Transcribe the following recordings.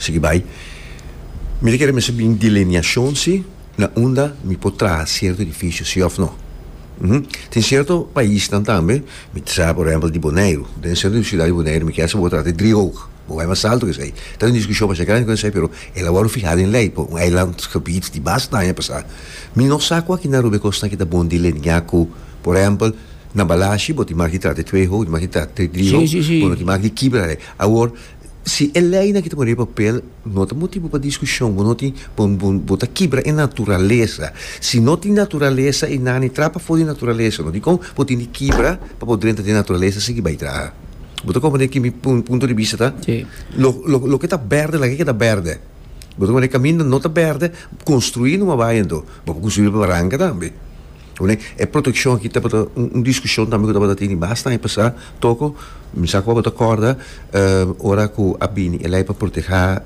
Sigui bai. Mi ta kere mester bin delineashon si na unda mi por traha sierto edifisio si of no. Uhm. Tin sierto paisnan tambe, mi ta sa por ehempel di Boneiru. Den sierto universidat di Boneiru mi kier sa bo a traha di driehoog. Bo bai mas alto kes ei. Ta un diskushon masha grandi ku esei pero el a wòrdu fihá den lei pa un eilandsgebied di basta aña pasá. Mi no sa ku aki na Aruba e kos na ki ta bon deliniá ku por ehempel na Balashi bo tin maki traha di tweehoog, tin maki traha di driehoog, bo no tin maki di kibra ei. Awor Si e leinan ki ta pone riba papel no ta motibu pa diskushon, bo no tin, bo, bo, bo ta kibra e naturalesa. Si no tin naturalesa, e nani trap afó di naturalesa, no? Dikon bo tin di kibra pa bo drenta den naturalesa sigui bai traha? Bo ta komprende ki mi pun, punto di bista ta? Sí. Lo, lo, loke ta bèrdè laga e keda bèrdè. Bo ta komprende kaminda no ta bèrdè, konstruí numa bai anto. Bo por konstruí riba baranka tambe. Oe, e protekshon aki tabata un diskushon tambe ku tabata tene bastan e pasa toko. Mi sa ku bo ta kòrda ora ku a bini e lei pa protehá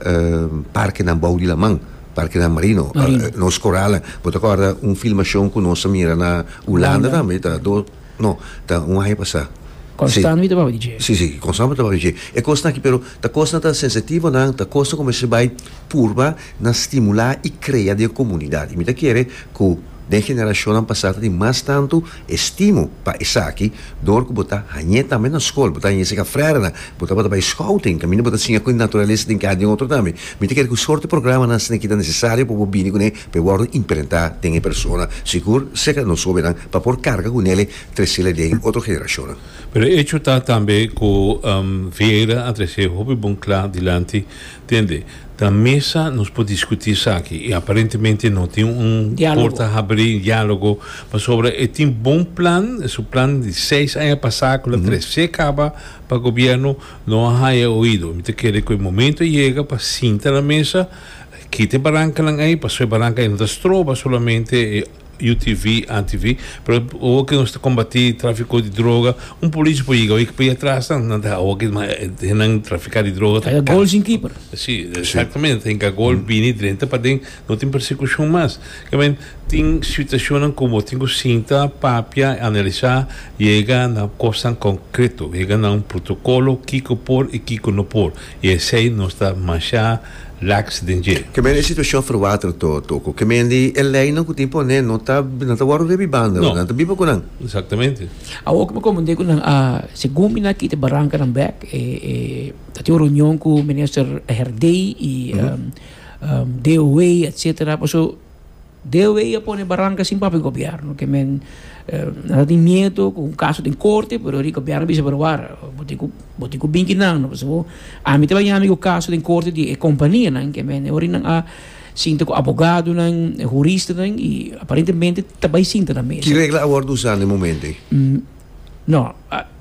parkenan bou di laman, parkenan marino, nos koralen. Bo ta kòrda un filmashon ku nos a mira na Ulanda tambe, ta dos, no, ta un aña pasá. Konstant bo tabata di dje. Sí, sí, konstant bo tabata di dje. E kosnan aki, pero ta kosnan ta sensitivonan, ta kosnan ku mester bai purba na stimulá i krea den komunidat. I mi ta kere ku. Den generashonnan pasá ta tin mas tantu estimu pa esaki dor ku bo ta hañ'é tambe na skol. Bo ta hañ'é sega frèdernan. Bo tabata bai skouting, kaminda bo ta siña ku e naturalesa den kaya den otro tambe. Mi ta kere ku sorte programanan asina ki ta nesesario pa bo bini kuné pa e wòrdu imprentá den e persona, sigur sega nos hóbennan, pa por karga ku nele tresele den otro generashonnan. Pero e echo ta tambe ku Vieira a trese hopi bon kla dilanti Tende, ta mesa nos por discuti esaki y aparentemente no tin un porta habri, un dialogo, pasobra e tin bon plan, e su plan di seis aña pasa cu lo trece caba pa gobierno, no a haya oido. Mi ta kere cu e momento a yega pa sinta na mesa, kita e barancanan ey, pasobra e baranca ey no ta stroba solamente e. UTV, ATV, pero awo ke nos ta kombati trafiko di droga un polishi por yega oye p'e atras nan nan ta awo ke nan trafika di droga ta kansa si exactamente ta hinka gol bini drenta paden no tin persekushon mas kiawen tin situashonnan ku bo tin ku sinta papia analisá yega na kosnan konkreto yega na un protokolo kiko por i kiko no por. I esei nos ta mashá lax den dje. Kèmen e situashon ferwater to, Toko? Kèmen di e leinan ku tin pon'é no ta nan ta wòrdu riba e banda, no? Nan ta biba ku nan. Exactamente. Awor ku mi komprendé ku nan a segun mi na kita barankanan bèk e e ta tin un reunion ku Minister Herdey i DOW etcetera paso Deo ei a pone baranca sin papia gobierno ke men ata tin miedo cu un caso den corte pero ri gobierno a bisa pero wara bo tin cu bo tin cu binki nan no pasobra ami ta baña mi cu caso den corte di e companianan ke men ora nan a sinta cu abogadonan huristanan y aparentemente ta bay sinta na mesa. Ki regla a wordo usa na e momento ei? No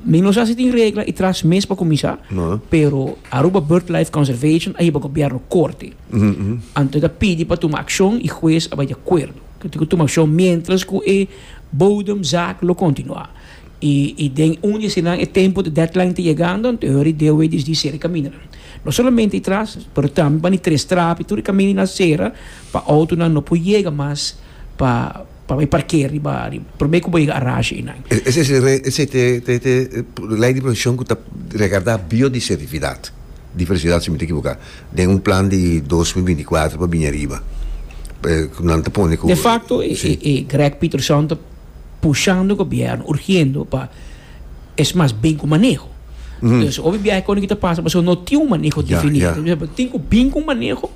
mi no sa si tin regla y tras mes pa cuminsa No. pero Aruba Bird Life Conservation a hiba gobierno corte. Anto ta pidi pa tuma akshon i hues a bai di akuerdo. Lo tin ku tuma akshon miéntras ku e bodemzak lo kontinuá. I den un di eseinan e tempu di deadline ta yegando, anto e ora di DOW disdi sera e kamindanan. No solamente ei tras, pero tambe bani tres trap i tur e kamindanan sera pa outonan no por yega mas pa. Pa bay parkea riba di prome cu bo yega Arashi inan. Esey ta e ley di proteccion cu ta regarda biodisertividad. Diversidad si mi no ta equivoca. Den un plan di dos mil binti cuatro pa bini ariba. Cu nan ta pone cu. De facto e Greg Pieterson ta pushando e gobierno, urgiendo pa es mas bin cu maneho. Entonces obi biaha e con e ki ta pasa pasobra no tin un maneho definido. Tin cu bin cu un maneho.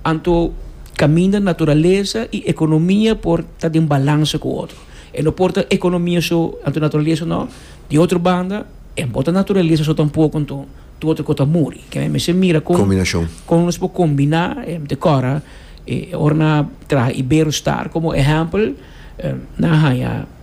Anto kaminda naturalesa i ekonomia por ta den balanse ku otro. E no por ta ekonomia so, anto naturalesa no. Di otro banda, e no ta naturalesa so tampoko, anto tur otro kos ta muri. Ke mester mira kon kon nos por kombiná. Mi ta kòrda ora nan traha Iberostar komo ehèmpel, nan haña.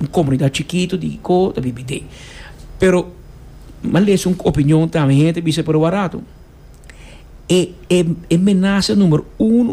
Un comunidad chikitu di Iko ta bin bidé. Pero m'ha lesa un opinion tambe, hende ta bisa, pero warato, e, e, e menaza numero uno,